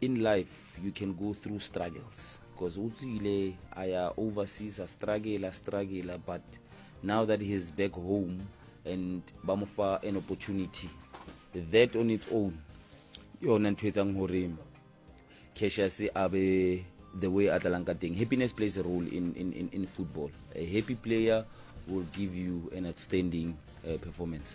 In life you can go through struggles because o tswile a ya overseas a struggle a struggle but now that he is back home and ba mo fa an opportunity that on its own yona ntho etsang gore Cassius a be the way a tlalang ka teng happiness plays a role in, in, in, in football a happy player will give you an outstanding uh, performance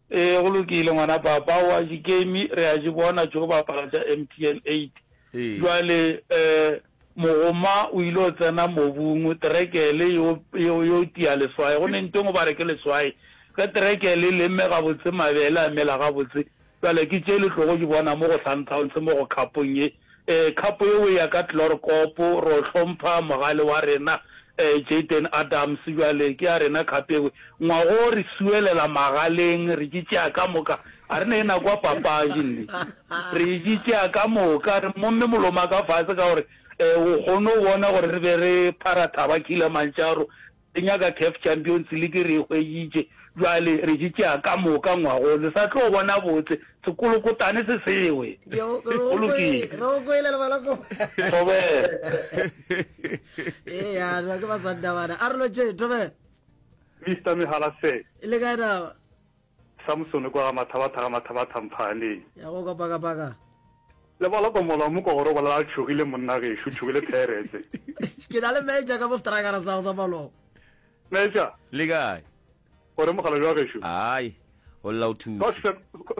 Ee, go lokile, ngwana papa, o a ji game, re a ji bona tšo bapala tša MTN 8. Jwale, eh, mogoma o ile o tsena mobung, terekele yo, yo, yo tia leswae. Go ne ntweng o ba re ke leswae. Ge terekele e lemme gabotse, mabele a mela gabotse. Jwale ke tše le tlogo di bona mo go Sundowns, mo go kapong ye. Ee, khapo yeo e ya ka Tlorkop. Re o hlompha mogale wa rena Jayden Adams. Bjale ke ya rena khapo ewe. Ngwago re suelela magaleng, re di tšea ka moka. A re ne e nako ya papadi nne. Re di tšea ka moka, re momme moloma ka fase ka gore o kgonne go bona gore re be re phara thaba killer mantšaro. Re nyaka Caf Champions League, re e hweditše, bjale re di tšea ka moka ngwago, le sa tlo bona botse, sekolokotane se sewe. Go lokile. Thobela. Mister Mehala sir. Le kae na? Samsone kwa ga Mathabatha ga Mathabatha Mphaaneng. Ya go kapakapaka. Le bala kwa mola wa moko gore o bolela a tšhogile monna gešo, tšhogile theeretse. Ke na le Major ka bostrakara sa go sa Malogo. Major. Le kae? Gore mogala bjang gešo? Ai, go lla o thuse.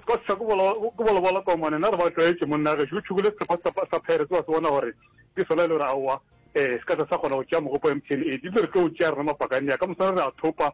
Scott sa ke bolobola kwa mone, na re ba tlwaetše monna gešo. O tšhogile setlhapa sa theeretse wa se bona gore ke sona e le gore aowa, um se ka sa sa kgona go tšea mogopo wa MTN e di le re tlo o tšea rena mapakane ya ka moswana re a thopa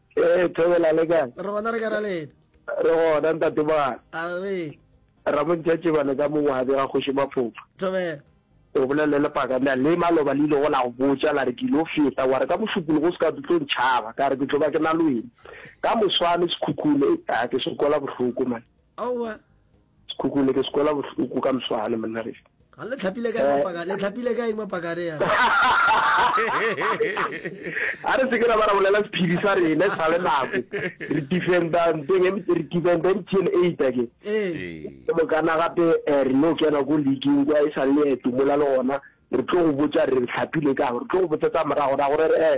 Ee, Thobela le kae? Re gona re ka ra lena. Re gona ntate ba. A re. Ramontša tšeba le ka mo wa bega kgoši maphofa. Thobela. O bolele le paka na le maloba le ile go la go botša la re ke lo feta wa re ka mošupologo o se ka tlo ntšhaba ka re ke tlo ba ke na le wena ka moswane sekhukhune a ke sokola bohloko man. Aowa. Sekhukhune ke se kwela bohloko ka mswane monna re. Ga le tlhapile kae mapaka le tlhapile kae mapaka re yana. A re se ke ra ba ra bolela sephiri sa rena sa le nako. Re defenda nteng e re defenda MTN 8 a ke. Ke mo kana gape eh, re no kena go league kwa e sa le eto mola le gona re tlo go botsa re tlhapile ka re tlo go botsa tsa morago ra gore eh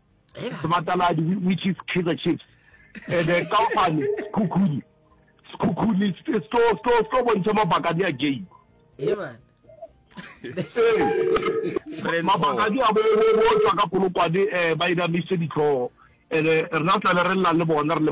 sebataladi which is kaizer chiefs and eh, kaofane sekhukhuni sekhukhuni se tlo bontšha mabakadi a game mabakadi a botswa ka polokwane um ba inamiše ditlhogo and-e rena tlale re llang le bona re le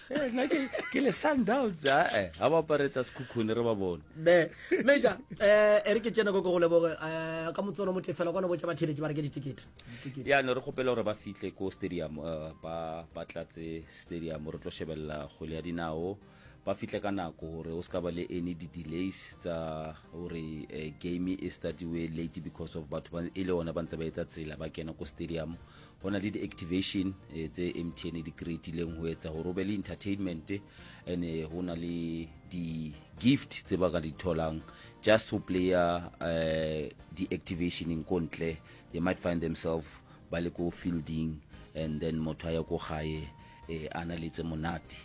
Eh, nna ke ke le sundowns ae ga ba aparetsa sekhukhune re ba bone me meja um e re ke tsene ko ke go leboge um ka motsono motle fela kwana botsa batheletše ba reke ditekete Ditekete. yaanong re kgopela gore ba fitlhe ko stadium eh, ba ba tlatse stadium re tlo shebelela kgwele ya dinao ba fitlhe ka nako gore o se ka ba le any di-delays tsa gore eh, game e startiwe late because of batho ba e le one ba ntse ba etsa tsela ba kena ko stadium go na le di-activation eh, tse mtn e di creatileng go etsa gore o be le entertainment and eh, go na le di-gift tse ba ka di tholang just go player uh, di-activationeng ko ntle they might find themselves ba le ko fielding and then motho a ya ko gae eh, a na letse monate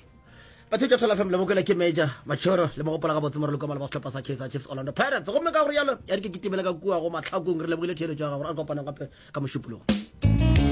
batshedi ya tholafm le bokela ke major machoro le mogopola ga botse moreloko mala ba setlhopha sa kaizer chiefs orlando pirates gomme ka gore yalo ya re ke kitimele ka kua go matlhakong re lebogile theeletso ya gago re a kopanang gape ka mošupologo